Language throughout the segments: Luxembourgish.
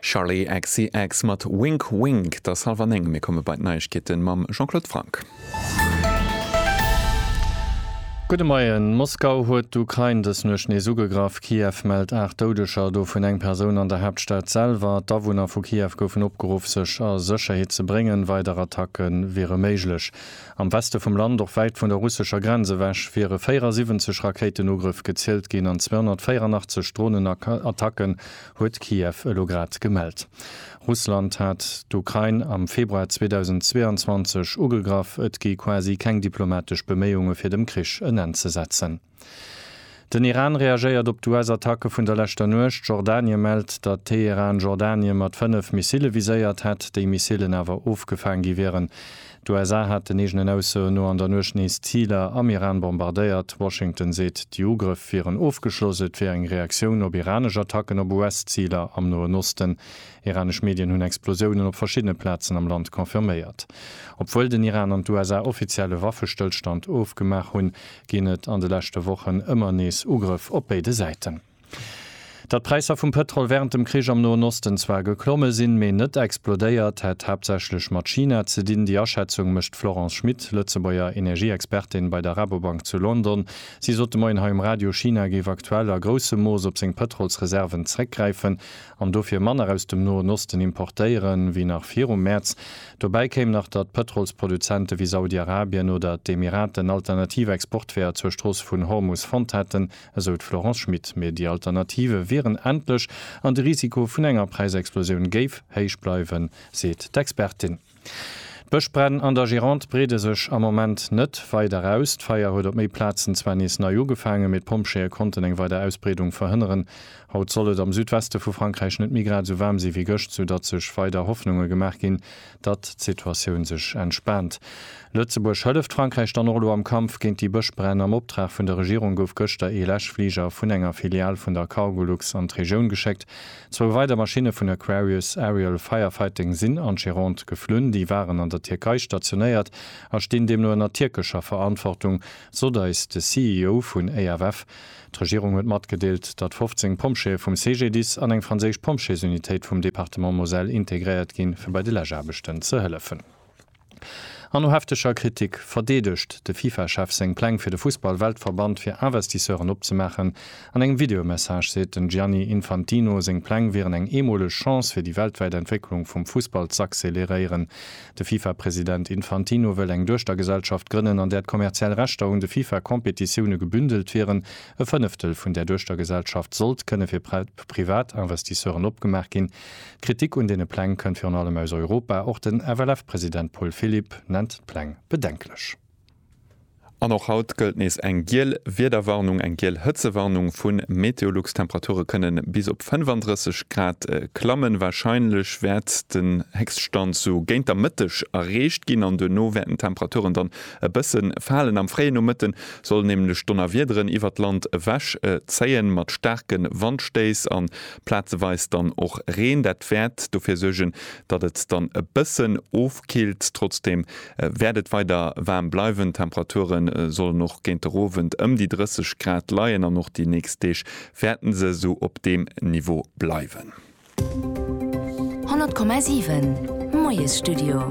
Charli XCX mat Wink Wink. Et ass hallef an néng. Mir komme bei d'Neiegkeete mam Jean-Claude Franck. Gudde Moien. Moskau huet d'Ukrain dës Nuecht nees ugegraff. Kiew mellt 8 Doudeger, dovun eng Persoun an der Haaptstad selwer. D'Awunner vu Kiew goufen opgeruff, sech a Sécherheet ze bréngen. Weider Attacke wiere méiglech. Am Weste vum Land, och wäit vun der russescher Grenz ewech, wiere 74 Rakéitenugrëff gezielt ginn an 284 Dronenattacken huet Kiew elo grad gemellt. Russland hat d'Ukrain am Februar 2022 ugegraff. Et gi quasi keng diplomatesch Beméiunge fir dem Krich en Enn ze setzen. Den Iran reagéiert op d'US-Attacke vun der leschter Nuecht. Jordanie mellt, datt Teheran Jordanie mat fënnef Missille viséiert hätt, déi Missillen awer ofgefaang gi wieren. D'USA haten eegenen Aussoen no an der Nuecht nees Ziler am Iran bombardéiert. Washington seet, déi Ugrëff wieren ofgeschloss, et wier eng Reaktioun op iranesch Attacken op US-Ziler am Noen Osten. Iranesch Medien hunn Explosiounen op verschiddene Plazen am Land confirméiert. Obwuel den Iran an d'USA offiziell e Waffestëllstand ofgemaach hunn, ginn et an de leschte Wochen ëmmer nees Ugrëff op béide Säiten. Datt d'Präisser vum Pëtrol wärend dem Krich am Noen Osten zwar geklomme sinn, mee net explodéiert, hätt haaptsächlech mat China ze dinn. Déi Aschätzung mécht d'Florence Schmit, Lëtzebuerger Energieexpertin bei der Rabobank zu London. Si sot de Moien hei um Radio, China géif aktuell a groussem Mooss op seng Pëtrolsreserven zréckgräifen, an dofir manner aus dem Noen Osten importéieren, wéi nach virum Mäerz. Dobäi kéim nach, datt Pëtrolsproduzente wéi Saudi-Arabien oder d'Emiraten alternativ Exportweeër zur Strooss vun Hormus fonnt hätten, esou d'Florence Schmit. Mee déi Alternative wieren endlech an de Risiko vun enger Präisexplosioun géif héich bleiwen, seet d'Expertin. D'Bëschbränn an der Gironde breede sech am Moment net weider aus. D'Feier huet op méi Plazen zwar nees nei ugefaangen, mee d'Pompjeeë konnten eng weider Ausbreedung verhënneren. Haut soll et am Südweste vu Frankräich net méi grad esou waarm si wéi gëscht, soudatt sech weider Hoffnunge gemaach ginn, datt d'Situatioun sech entspaant. Lëtzebuerg hëlleft Frankräich dann och elo am Kampf géint déi Bëschbränn. Am Optrag vun der Regierung gouf gëschter ee Läschfliger vun enger Filial vun der Cargolux an d'Regioun geschéckt, Zwou weider Maschinne vun Aquarius Aerial Firefighting sinn an d'Gironde geflunn. Déi waren an der Tierkei stationéiert a stinn deemno ënner tierkescher Verantwortung, sot eis de CEO vun EFF. D'Regierung huet matgedeelt, datt 15 Pompjeeë vum CGDIS an eng franséisch Pompjeesunitéit vum Departement Moselle integréiert ginn, fir bei de Läschaarbechten ze hëllefen. An no hefteger Kritik verdeedegt de FIFA-Chef seng Pläng fir de Fussball-Weltverband fir Investisseuren opzemaachen. An engem Videomessage seet den Gianni Infantino, seng Pläng wieren eng eemoleg Chance fir déi weltwäit Entwécklung vum Fussball z'acceleréieren. De FIFA-President Infantino wëll eng Duechtergesellschaft grënnen, an där d'kommerziell Rechter un de FIFA-Competitioune gebündelt wieren. E Fënneftel vun där Duechtergesellschaft sollt kënne fir Privatinvestisseuren opgemaach ginn, Kritik un deene Pläng kënnt virun allem aus Europa. Och den FLF-President Paul Philipp nennt d'Pläng bedenklech. An och haut gëllt nees eng giel Wiederwarnung, eng giel Hëtzewarnung vu Meteolux. D'Temperature kënne bis op 35 Grad klammen. Warscheinlech wäert den Héchststand sou géint der Mëtteg erreecht ginn an duerno wäerten d'Temperaturen dann e bësse falen. Am fréie Nomëtte sollen nämlech Donnerwiederen iwwert d'Land ewech zéien, mat staarke Wandstéiss a plazeweis dann och Reen. Dat wäert dofir suergen, datt et dann e bëssen ofkillt. Trotzdeem wäert et weider waarm bleiwen. D'Temperature sollen och géint der Owend ëm déi 30 Grad leien an och déi nächst Deeg wäerten se esou op deem Niveau bleiwen. 100,7 Moiesstudio.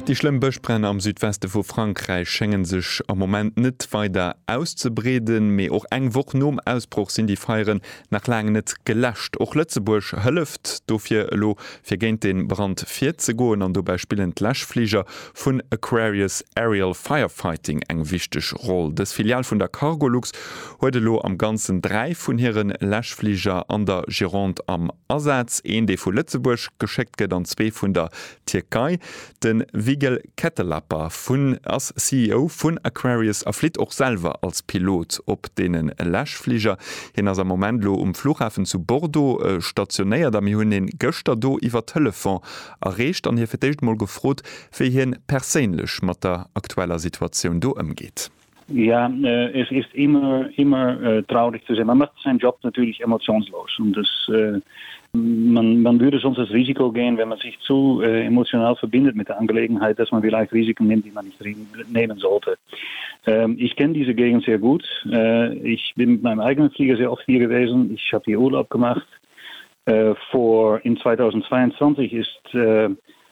Déi schlëmm Bëschbränn am Südweste vu Frankräich schéngen sech am Moment net weider auszebreeden. Mee och eng Woch nom Ausbroch sinn déi Feieren nach laang net geläscht. Och Lëtzebuerg hëlleft dofir elo, fir géint de Brand virzegoen. An dobäi spillen d'Läschfliger vun Aquarius Aerial Firefighting eng wichteg Roll. Dës Filial vun der Cargolux huet elo am Ganzen dräi vun hire Läschfliger an der Gironde am Asaz, een, dee vu Lëtzebuerg geschéckt gëtt, an zwee vun der Tierkei. De Vigil Kettelapa vun ass CEO vun Aquarius a flitt och selwer als Pilot op deene Läschfliger. Hien ass am Moment elo um Flughafen zu Bordeaux stationéiert a mir hunn e gëschter do iwwer Telefon erreecht an hie fir d'éischt emol gefrot, wéi hien perséinlech mat der aktueller Situatioun do ëmgeet. Ja, äh, es ist immer, immer äh, traurig zu sehen. Man macht seinen Job natürlich emotionslos und das, äh, man, man würde sonst das Risiko gehen, wenn man sich zu äh, emotional verbindet mit der Angelegenheit, dass man vielleicht Risiken nimmt, die man nicht nehmen sollte. Ähm, ich kenne diese Gegend sehr gut. Äh, ich bin mit meinem eigenen Flieger sehr oft hier gewesen. Ich habe hier Urlaub gemacht. Äh, vor in 2022 ist äh,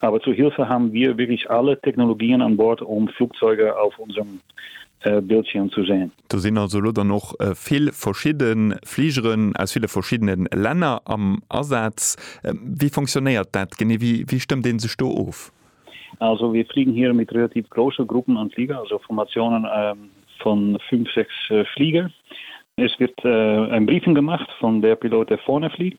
Aber zur Hilfe haben wir wirklich alle Technologien an Bord, um Flugzeuge auf unserem Bildschirm zu sehen. Do sinn also elo dann och vill verschidde Fligeren aus ville verschiddene Länner am Asaz. Wéi fonctionnéiert dat genee? Wéi stëmmt ee sech do of? Also wir fliegen hier mit relativ grosse Gruppen an Fliger, also Formationen von fünf, sechs Fliger. Es wird ein Briefing gemacht von der Pilot, der vorne fliegt.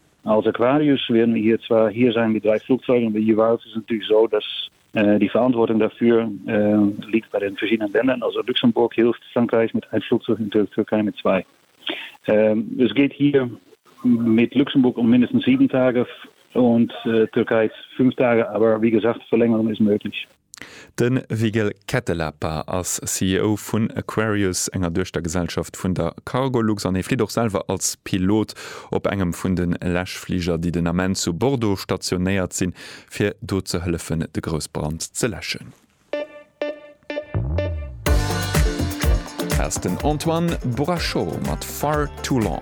Als Aquarius wären mir hier zwar hier sein mit 3 Flugzeugen, aber jeweils ist es natürlich so, dass die Verantwortung dafür liegt bei den verschiedenen Ländern, also Luxemburg hilft Frankreich mit 1 Flugzeug und der Türkei mit 2. Es geht hier mit Luxemburg um mindestens 7 Tage und Türkei 5 Tage, aber wie gesagt, Verlängerung ist möglich. De Vigil Käätelääpä ass CEO vun Aquarius, enger Duechtergesellschaft vun der Cargolux, an hie flitt och selwer als Pilot op engem vun de Läschfliger, déi den Ament zu Bordeaux stationéiert sinn, fir do ze hëllefen, de Groussbrand ze läschen. Hei ass den Antoine Bourachot mat Far Too Long.